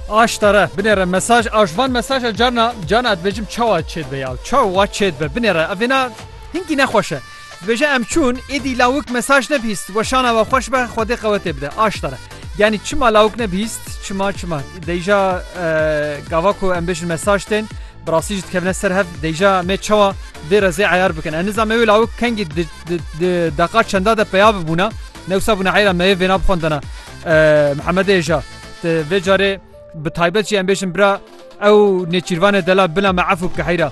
Aştara binêre mesaj a ji van mesaja carna carna ez dibêjim çawa çêt be ya çawa wa çêt be binêre ev vêna hinkî nexweş e. Dibêje em çûn êdî lawik mesaj nebîst weşana we xweş be xwedê qewetê bide aştara. Yani çima lawik nebîst çima çima deyja gava ku em bêjin mesaj tên bi rastî ji dikevne ser hev deyja me çawa vê rezê eyar bikin. En nizame wê lawik kengî deqa çenda de peya bibûna newsa bûna eyra me vêna bixwendana. Mihemedê ja te vê carê bi taybet jî em bêjin bira ew nêçîrvanê dela bila me efû bike heyra.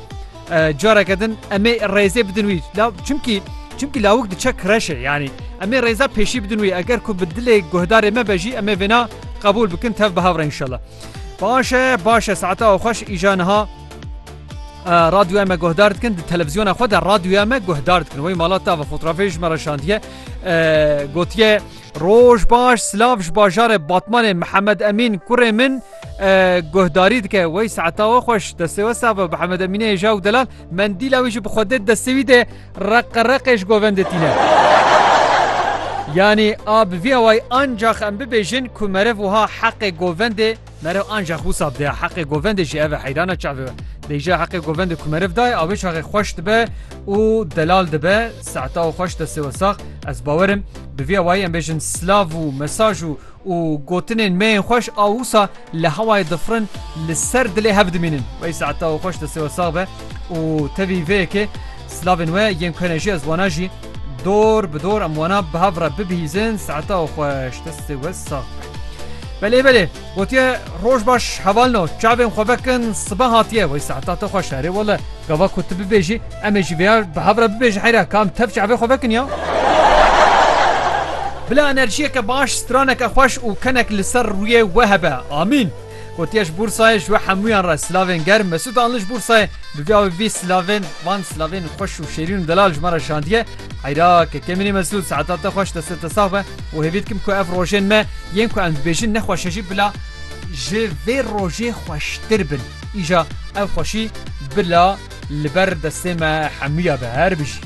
Careke din emê rêzê bidin wî la çimkî çimkî lawik diçe kireşê yanî emê rêza pêşî bidin wî eger ku bi dilê guhdarê me be jî emê vêna qebûl bikin tev bi hevre inşallah. Başe başe saeta ew xweş îja niha radyoya me guhdar dikin di televizyona xwe de radyoya me guhdar dikin wê malata ve fotoğrafê ji me re şandiye gotiye Roj baş silav ji bajarê Batmanê Mihemed Emîn kurê min guhdarî dike wey saeta we xweş destê we save Mihemed Emînê hêja û delal mendîla wî jî bi xwe dê destê wî dê reqe reqê ji govendê tîne. Yanî a bi vî awayî ancax em bibêjin ku meriv wiha heqê govendê Meriv ancax wisa bidaya heqê govendê jî ev e heyrana çavê we. Bêje heqê govendê ku meriv daye avê çaxê xweş dibe û delal dibe saeta û xweş destê we sax ez bawer im bi vî awayî em bêjin silav û mesaj û û gotinên me yên xweş a wisa li hewayê difirin li ser dilê hev dimînin wey saeta û xweş destê we sax be û tevî vê yekê silavên we yên ku hene jî ez wana jî Dor bi dor em wana bi hev re bibihîzin saeta û xweş destê we sax be. Belê belê gotiye roj baş hevalno çavên xwe vekin sibe hatiye wey saeta te xweş erê wele gava ku tu bibêjî em ê jî vêya bi hev re bibêjin heyra kam tev çavê xwe vekin ya. Bila enerjiyeke baş straneke xweş û kenek li ser rûyê we hebe. Amîn. Gotiye ji Bursayê ji we hemûyan re silavên germ. Mesûd Anli ji Bursayê bi vî avê vî silavên van silavên xweş û şêrîn û delal ji me re şandiye. Heyra Kekemînî Mesûd saeta te xweş deste te sax be û hêvî dikim ku ev rojên me yên ku em dibêjin ne xweş e jî bila ji vê rojê xweştir bin. Îja ev xweşî bila li ber destê me hemûya be. Herbijî.